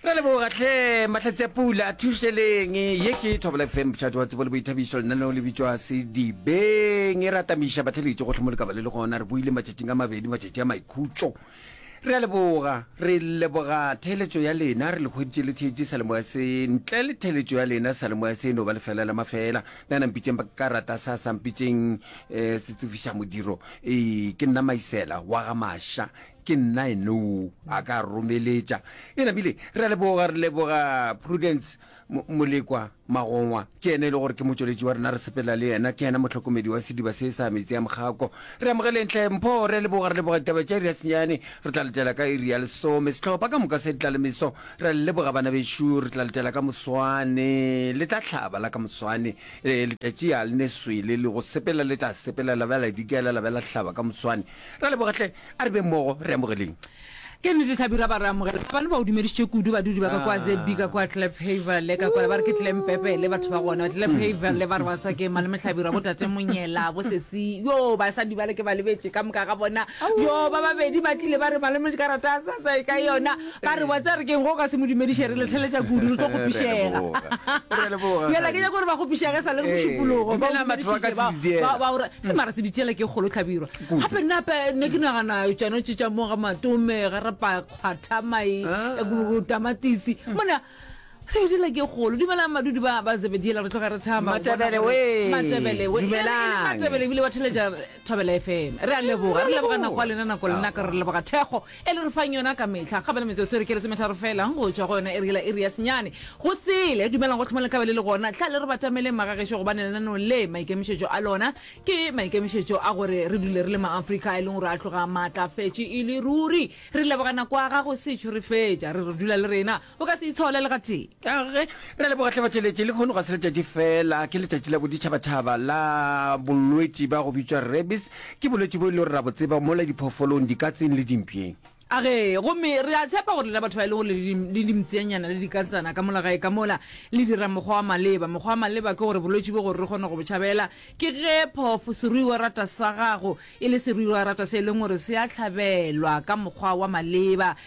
Re a leboga hle mahlatsi a pula a thušeleng ye ke thobela fm botšhati wa tsebo le boithabišo lenaneo le bitšwa sedibeng e re atamiša batheletše gohle mo le ka ba le le gona re boile matšatšing a mabedi matšatši a maikhutšo re a leboga re leboga theeletšo ya lena re le kgweditše le theetše salemoya se ntle le theeletšo ya lena salemoya se e no ba lefela la mafela na nampitšeng ba ka rata sa sampitšeng um eh, se tsefiša modiro ee ke nna maisela wa ga maša Ke nna enoo a ka romeletša. Eena bile, re a leboga, re leboga Prudence Mo, Molekwa Magongwa. Ke yena e le gore ke motšweletši wa rena, re sepela le yena. Ke yena mohlokomedi wa sediba se sa metsi a Mokgako. Re amogeleng hle Mpho, re a leboga, re leboga ditaba tša iri ya senyane. Re tla letela ka iri ya lesome. Sehlopha ka moka se tla le meso. Re a le leboga bana bešo, re tla letela ka moswane. Le tla hlaba la ka moswane. E, letšatši a le ne swele, le go sepela le tla sepela, la ba la dikela, la ba la hlaba ka moswane. Ra leboga hle, a re beng mmogo, re amogeleng. Ke nnete Thabi, ra ba re amogela. Ga bane ba o dumedišitše kudu badudi ba ka kwa ZB ka kwa Kliphaverle ka kwala ba re ke Klempepele batho ba gona. Kliphaverle ba re wa tswa ke Malome Hlabirwa, bo Tate Monyela, bo Sesi. Yo, basadi bale ke ba lebetše ka moka ga bona. Yo, ba babedi ba tlile ba re Malome le karata a sa sa e ka yona. Ba re wa tsaya re keng ge o ka se mo dumediše re le theletša kudu re tlo go pišega. Bjale ke nyaka gore ba go pišege sa le re mošupologo ba o dumedišitše ba ba o e mara se bitšela ke kgolo tlhabirwa gape nna pe ne ke nagana tsone tše tša moga matome ga re pa kgwatha mai Ah. eh, tamatisi mona se bitšela ke kgolo dumelang madudi ba ba zebediela re tloga re thama go bona Matebele gore- wee, matebele wee. dumelang. E re- e re matebele ebile wa theletša thobela fm re a leboga re leboga nako ya lena nako lenaka re leboga thekgo e le re fang yona ka mehla. Kgabele metsotso e re ke lesometharo feela go tšwa go yona e re yela iri ya senyane. Go sele, dumelang go hloma lekgabele le gona. Hlale re batameleng magagešo gobane lenaneo le, maikemišetšo a lona ke maikemišetšo a gore re dule re le maAfrika, e leng gore a tloga a maatlafetše e le ruri. Re leboga nako ya gago Setšo re fetša re re dula le rena. O ka se e tshole le gatee. Age, re a leboga hle batšweletši. Le kgono ga se letšatši feela, ke letšatši la boditšhabatšhaba la bolwetši ba go bitšwa rabies. Ke bolwetši bo e lego re a bo tseba mola diphooffolong, dikatseng le dimpšeng. Age, gomme re a tshepa gore lena batho ba e lego le le dimpshenyana le dikatsana ka mola gae ka mola, le dira mokgwa wa maleba. Mokgwa wa maleba ke gore bolwetši bo gore re kgone go bo tšhabela, ke ge phoofo, seruiwarata sa gago, e le seruiwarata se e leng gore se a tlhabelwa ka mokgwa wa maleba,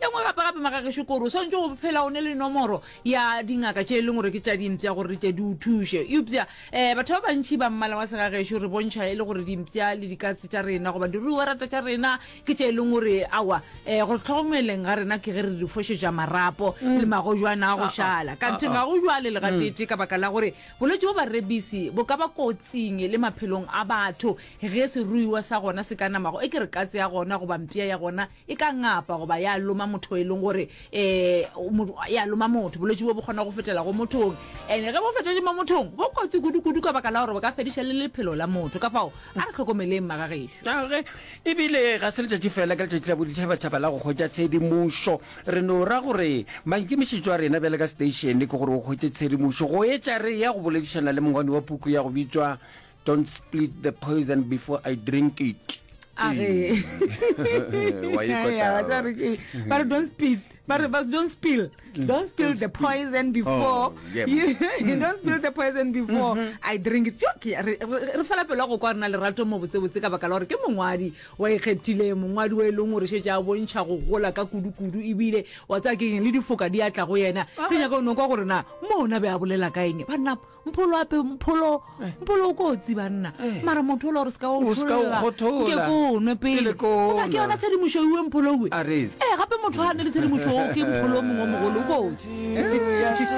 ye nngwe gape gape magagešo kore o swanetše go phela o ne le nomoro ya dingaka tše e leng gore ke tša dimpša gore di tle di o thuše eupša um batho ba bantšhi ba mmala wa segagešo re bontšha e le gore dimpša le dikatse tša rena goba diruiwa rata tša rena ke tše e leng gore awa um gore tlhogomeleng ga rena ke ge re di fošetša marapo mm. le magojwana a go ah, ah. šala ka nthe ga go jwale le gatete mm. ka baka la gore bolwetse bo barebisi bo ka ba kotsing le maphelong a batho ge seruiwa sa gona se ka namago e ke re katse ya gona goba mpša ya gona e ka ngapa goba ya loma motho e leng gore um ya loma motho bolwetse bo bo kgona go fetela go mothong ande ge bo fetele mo mothong bo kotsi kudu-kudu ka baka la gore bo ka fediša le lephelo la motho ka fao a re tlhokomeleng magagešo gage ebile ga se letšatši fela ka letšatši la boditšhabatšhaba la go kgwetša tshedimošo re no ra gore maikemišetšo a rena bjale ka seteišene ke gore o kgwetše tshedimošo go etša re ya go boledišana le mongwani wa puku ya go bitšwa don't split the poison before i drink it a re Wa e kota. Ya, ba re ke- ba re don't spill ba re ba don't spill don't spill the poison before Oh, yeah. you, you don't spill the poison before i drink it Yo, ke ya- re re- re fela pelo ya go kwa rena lerato mo botsebotse ka baka la gore ke mongwadi wa ikgethileng mongwadi wa e leng gore šetse a bontšha go gola ka kudu-kudu ebile wa tsaya ke eng le difoka di atla go yena re nyaka o nokwa gore na mo ona be a bolela ka eng banna mpholo ape mpholo eh. mpholo o kotsi banna eh. mara motho ola gore se ka otlhollake ko nwe pele ona ke yona tshedimošo ewe mpholo uwe ee eh, gape motho ga ne le tshedimošo o ke mpholo o mongwe o mogolo o kotsi